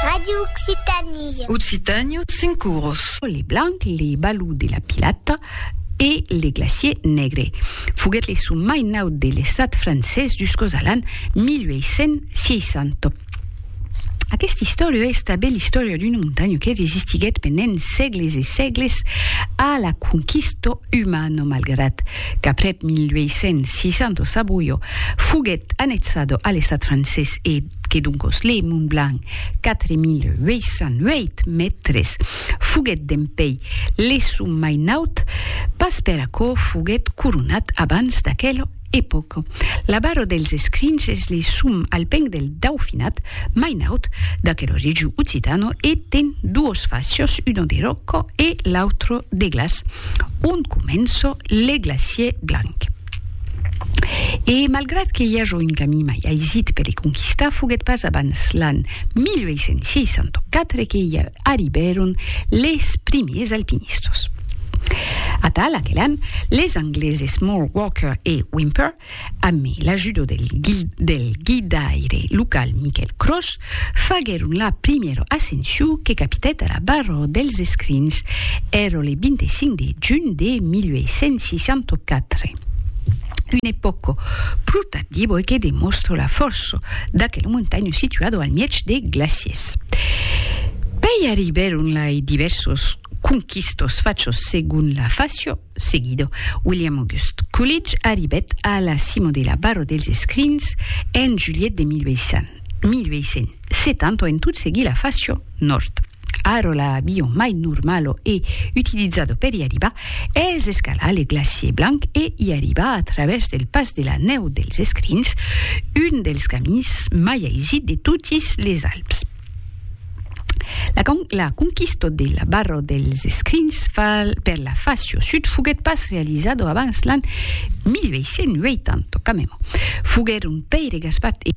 Radio Occitanie. Occitanie, cinq cours. Les blancs, les balous de la Pilate e les glaciers negres. Foguèt le son mai naut de l'estat francés jusqu'aus a l'an 1860. Aquesta història es tanben l'istòria d'una montanha que resistiguèt pendent sègles e sègles a la conquista umano malgrat qu'aprèp 1862 Saboio foguèt annexado a l'estat francés e que doncos le Mont Blanc, 4.808 mètres, foguèt dempèi le sum mai naut, pas per aquò foguèt coronat abans d'aquel E pòc. La barra dels escrins es le sum al peng del daufinat, mai naut, d'aquel origio occitano e ten duos facios, uno de ròca e l'autro de glaç, ont comença le glacièr blanc. E malgrat que i aja un camin mai aisit per le conquistar, foguèt pas abans l'an 1864 que i arribèron les primiers alpinistas. Atal aquel an, les angleses Moore, Walker e Whymper, amé l'ajuda del del guidaire local Michael Cross, faguèron la primièra ascension que capitèt a la barra dels escrins, èra le 25 de junh de 1864. Una epòca pro tardiba e que demòstra la fòrça d'aquela montanha situada al mièg de glaciers. Alemands. Pei arribèr onlai divèrsos conquistos fachos segon la fascio seguido. William August Coolidge arribèt a la cimo de la Barro dels Escrins en julhet de 1870 en tot seguir la fascio nòrd. Arò l'avion mai normalo e utilizado peri arribar Es escalà le glacier blanc e i arribà a travèrs del pas de la nèu dels Escrins, un dels camins mai aisit de totis les Alps. La conquista de la barra dels Escrins per la facio sud foguèt pas realizada abans l'an 1880, quand meme. Foguèron pèire gaspat e.